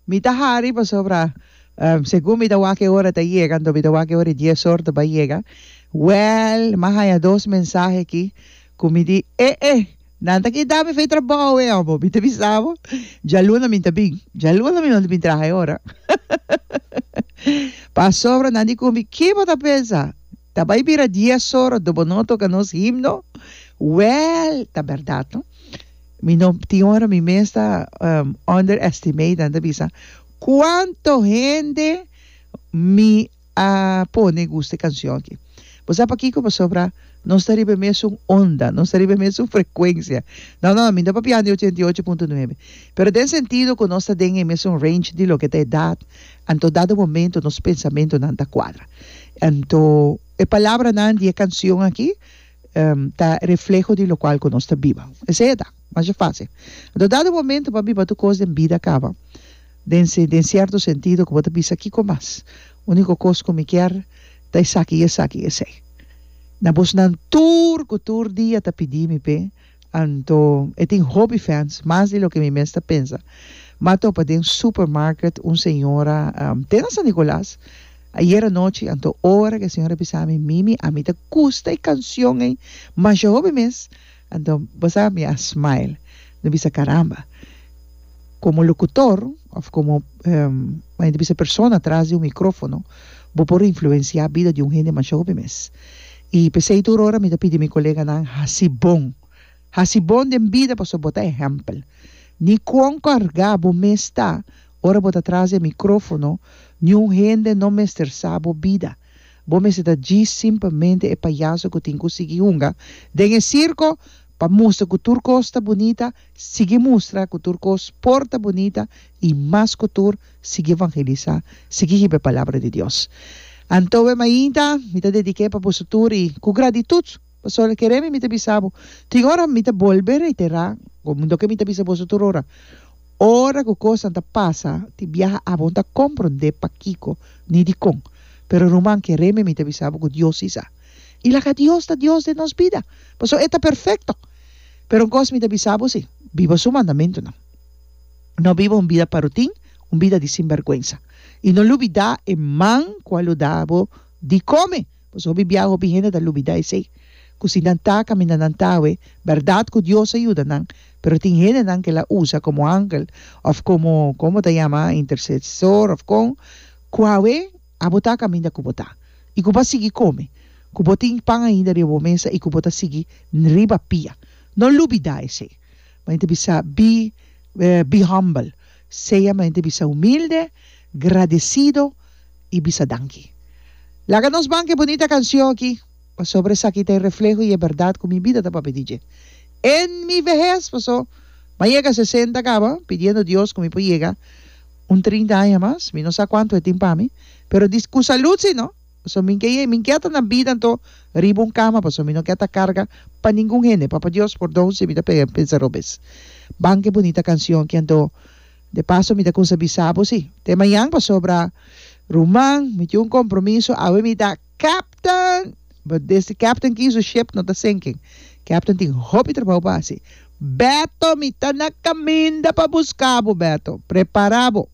Mi ta hari pasobra segun mi ta wak e ora ta yega anto mi ta wak e ora dies or ta bai yega wèl mi a haña dos mensahe aki ku mi di e e nan ta kita mi fei trabou e amo mi ta bisa bo djaluna mi ta bin djaluna mi no ta bin traha e ora pasobra nan di ku mi ki bo ta pensa Ta bai bira dies ora do bo no a toca nos himno? Well, ta berdad no. Mi no, tin ora mi mes ta underestimate nan ta bisa cuanto hende mi a pone gusta e cancion aki. Bo sa pakico? Pasobra nos ta riba e mesun onda, nos ta riba e mesun frecuencia. No, no, mi no ta papiando di ochenta i ocho punto nuebe, pero den sentido cu nos ta den e mesun range di loke ta edad, Anto dado momento nos pensamentonan ta cuadra. Anto e palabranan di e cancion aki ta refleho di locual cu nos ta biba. Esey a ta. Masha facil. Anto dado momento pabi pa tur cos den bida caba den si den cierto sentido cu bo ta bisa kico mas. Unico cos cu mi kier ta esaki y esaki y esey. Na bosnan tur cu tur dia ta pidi mi pe. Anto e tin hopi fans, mas di loke mi mes ta pensa. Mi a topa den supermarket un señora te na San Nicolas ayer anochi, anto ora cu e señora a bisa mi, Mimi, a mi ta gusta e cancion ey masha hopi mes, anto bo sa mi a smile, mi a bisa caramba, como locutor of como mi ta bisa persona tras di un microfono bo por influencia bida di un hende masha hopi mes. I p'esei tur ora mi ta pidi mi koleganan hasi bon. Hasi bon den bida pasobra bo ta ehèmpel. Ni kuon kargá bo mes ta ora bo ta tras di e mikrófono, niun hende no mester sa bo bida. Bo mester ta djis simplemente e payaso ku tin ku sigui hunga den e sirko. Pa mustra ku tur kos ta bunita, sigui mustra ku tur kos por ta bunita i mas ku tur, sigui evangelisá, sigui hib'é palabra di Dios. Anto e mainta mi ta dediké pa boso tur i ku gratitut, pasobra mi kere mi ta bisa bo, tin ora mi ta bolbe reiterá, komo do ke mi ta bisa boso tur ora, ora ku kosnan ta pasa tin biaha abon ta komprondé pakiko ni dikon, pero ruman kere mi ta bisa bo ku Dios i sa. i laga Dios ta Dios den nos bida, pasobra e ta perfekto. Pero un kos mi ta bisa bo si, biba su mandamentunan. No biba un bida pa rutin, un bida di sinbèrgwensa. I no lubidá e man ku a lo da bo di kome, pasobra hopi bia hopi hende ta lubidá esei. Ku si nan ta kaminda nan tawe, bèrdat ku Dios a yuda nan, pero tin hendenan ku el a usa komo angel òf komo, komo ta yama, intersesor òf kon, ku awe, Abo ta kaminda ku bo ta, i ku bo a sigui kome, ku bo tin pan ainda riba bo mesa i ku bo ta sigui riba pia. No lubidá esei. Mi ta bisa, bi, be humble, sea, mi ta bisa, humilde, gradesido i bisa danki. Laga nos ban ku e bunita kansion aki. Pasobra esaki ta e refleho i e bèrdat ku mi bida ta papia di dje en mi vehes. Paso m'a yega sesenta kaba pidiendo Dios ku mi por yega un trinta aña mas. Mi no sa kuantu e tin pa mi, pero di ku salud si no. Paso mi ke mi ke ta na bida anto riba un kama, paso mi no ke ta karga pa ningun hende. Papa Dios pordon si mi ta pensa robes. Ban ke bunita kansion ki anto. De paso mi ta kusa bisa bo si te mañan pasobra ruman mi tin un kompromiso awe mi ta. Captain! But desde captain kin su ship no ta sinking. Captain tin hopi trabao pa haci. Beto, mi ta na caminda pa busca bo, Beto. Prepara bo!